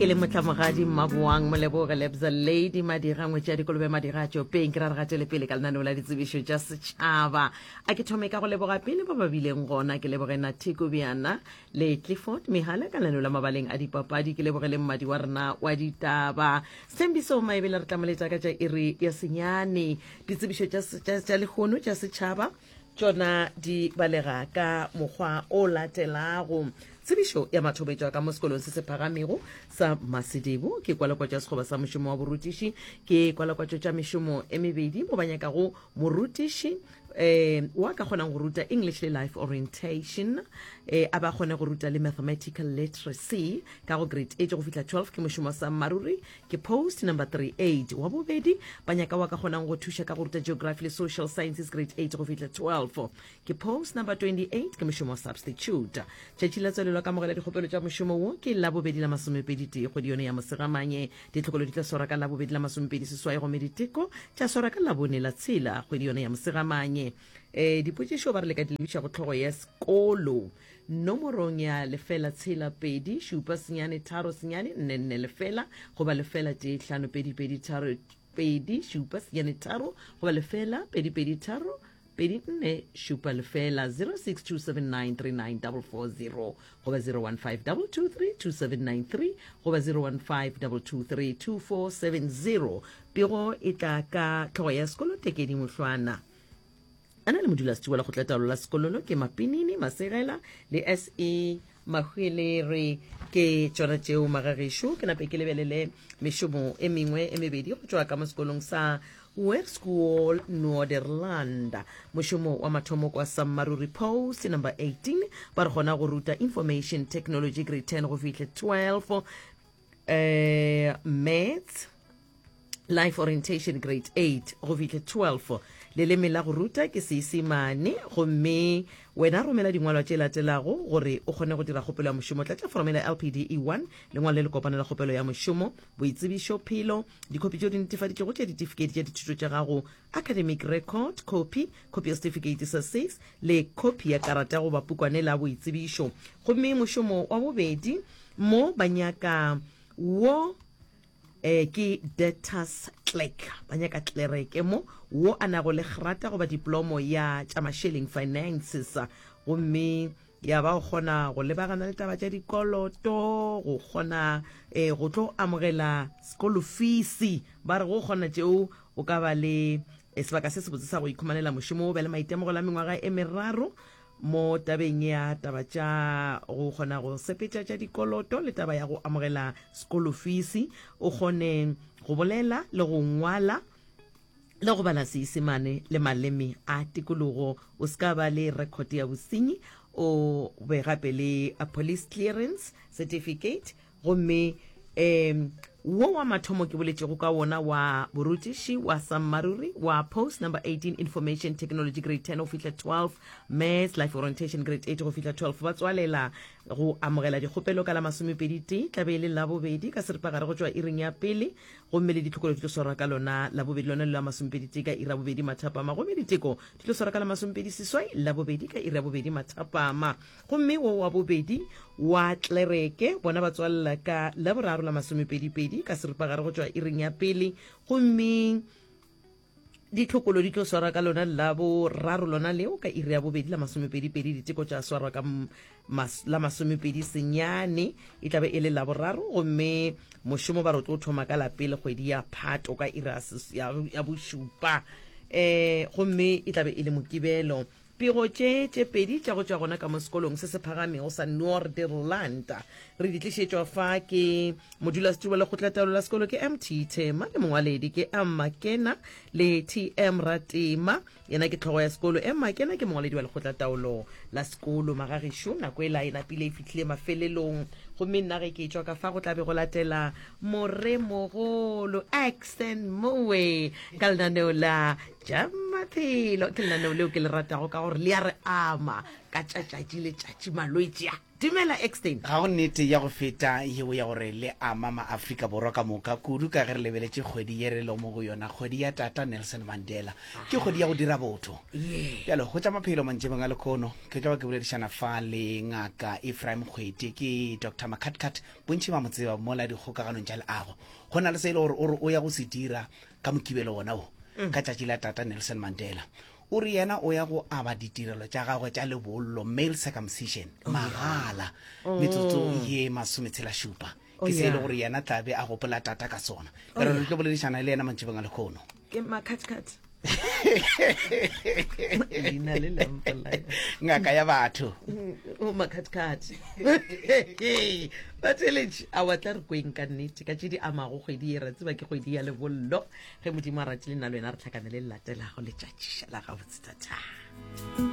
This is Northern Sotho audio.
ke le motlamogadi mmaboang moleboge lebza lady madira ngwetša dikolobe madira a tšopeng ke ra re gatele pele ka lenaneo la ditsebišo tša setšhaba a ke thome ka go leboga pele ba ba bileng gona ke leboge nathiko bjana le clifford megala ka lenaneo la mabaleng a dipapadi ke leboge le mmadi wa rena wa ditaba sethembiso maebele re tlamoletša ka tša iri ya senyane ditsebišo tša lehono tša setšhaba tšona di balega ka mokgwa o latelago tsebišo ya mathobetšwa ka mo sekolong se se phagamego sa masedebo ke kwalakwatšo ya sekgoba sa mošomo wa borutiši ke kwalakwatšo tša mešomo e mebedi mo ba nyakago morutiši um wa ka kgonang go ruta english le life orientation um a ba kgone go ruta le mathematical literacy ka go grade eight go fihla 12 ke mošomo sa mmaruri Ke post number 38. Wa bobedi, ba nyaka wa ka kgonang go thuša ka go ruta geography le social sciences grade 8 go fihla 12. Ke post number 28. Ke mošomo wa substitute. Tšatši la tswalelo ka mogela dikgopelo tša mošomo wo ke la bobedi la masomepedi tee kgwedi yone ya Mosegamanye. Ditlhokolo di tla swarwa ka la bobedi la masomepedi seswai gomme diteko tša swarwa ka labone la tshela kgwedi yone ya Mosegamanye. Eh, dipotšišo ba re le ka di lebiša go tlhogo ya sekolo. nomorong ya lefela tshela pedi šupa senyane tharo senyane nne nne lefela goba lefela tee hlano pedi pedi tharo pedi šupa senyane tharo goba lefela pedi pedi tharo pedi nne šupa lefela 0627939440 goba 0152232793 goba 0152232470 pego e tla ka tlhogo ya sekolo tekedi mohlwana A na le modulasetšo wa lekgotlataolo la sekololo ke Mapinini Masegela le SE Mahwele re ke tšona tšeo magagešo ke nape ke lebelele mešomo e mengwe e mebedi go tšwa ka mo sekolong sa Webschool Norderland mošomo wa mathomo kwa Sammaruri Post number 18 ba re gona go ruta information technology grade 10 go fihle 12 eh maths life orientation grade 8 go fihle 12 leleme la go ruta ke seisemane gomme wena romela dingwalwa tše latelago gore o kgone go dira kgopelo ya mošomo tlatša foromela lpde 1 lengwalo le le kopana la kgopelo ya mošomo boitsebišo phelo dikhopi tšeo di netefaditšego tša ditifikedi tša dithuto tša gago academic record copy copy ya setifikeiti sa six le copy ya karata goba pukwane la boitsebišo gomme mošomo wa bobedi Mo ba nyaka wo eh, ke Detas Clerk, ba nyaka klereke mo wo a nago le grata goba diplomo ya tša masheleng finances, gomme ya ba o kgona go lebagana le taba tša dikoloto go kgona eh, go tlo amogela sekolo feesi ba re go kgona tšeo o ka ba le eh, sebaka se sebotse sa go ikhumanela mošomo o be le maitemogelo a mengwaga e meraro mo tabeng ya taba tša go kgona go sepetša tša dikoloto le taba ya go amogela sekolofisi o kgone go bolela le go ngwala le go bala seisemane le maleme a tikologo o se ka ba le record ya bosenyi o be gape le a police clearance certificate gomme um wo wa mathomo ke boletšego ka wona wa borutiši wa sammaruri wa post number 18 information technology grade 10 go fihla 12 maths life orientation grade 8 go fihla 12 ba tswalela go amogela dikgopelo ka la masomepedi tee tlabe e le labobedi ka seripagare go tšwa iring ya pele gomme le ditlhokolo di tlo swarwa ka lona labobedi lona le la masomepedi tee ka ira bobedi mathapama gomme diteko di tlo swarwa ka la masomepedi seswai labobedi ka ira bobedi mathapama Gomme wo wa bobedi wa klereke bona ba tswalela ka Laboraro la masomepedipedi ka seripagare go tšwa iring ya pele, gomme ditlhokolo di tlo swarwa ka lona la boraro lona leo ka iri ya bobedi la masomepedipedi diteko tša swarwa ka mas, la masomepedi senyane e tlabe e le la boraro gomme mošomo ba re o tlo thoma ka la pele kgwedi ya phato ka iri ya bošupa um gomme e tlabe e le mokibelo Pego tše tše pedi tša go tšwa gona ka mo sekolong se se phagamego sa Noorderland re di tlišetšwa fa ke modulasetiri wa lekgotlataolo la sekolo ke mt Thema le mongwaledi ke Emma Kena le TM Ratema yena ke tlhogo ya sekolo. Emma Kena ke mongwaledi wa lekgotlataolo la sekolo. Magagešu nako e la e napile e fihlile mafelelong gomme nna ge ke tšwa ka fa go tla be go latela moremogolo Axton Moe ka lenaneo la ja maphelo ke lenaneo leo ke le ratago ka gore le ya re ama ka tšatšatši le tšatši malwetši a dumela extain ga go nnete ya go feta yeo ya gore le ama maaforika borwa ka moka kudu ka ge re lebeletše kgwedi ye re lo mo go yona kgwedi ya tata nelson mandela ke kgwedi ya go dira botho ye bjalo go tša maphelo mantšebeng a lekono ke tlago ke boledišana fa le ngaka efraim kgwete ke dr macatcat bontšhi ba mo tseba mola dikgokaganong tša leago go na le se e le gore o re o ya go se dira ka mokibelo wona o mm. ka tšatši la tata nelson mandela o re yena o ya go aba ditirelo tša gagwe tša lebollo male circumcision oh, magala oh. metsotso ye masometshela šupa oh, ke se e le gore yena tlabe a gopola tata ka sona pero re tlo boledišana le yena mantšibeng a lekgono ngaka ya batho mm, Batheeletši, awa tla re kweng ka nnete ka tše di amago kgwedi ye. Ra tseba ke kgwedi ya lebollo. Ge Modimo a ratile nna le wena re tlhakanele le latelago letšatši la gabotse. Thathaa.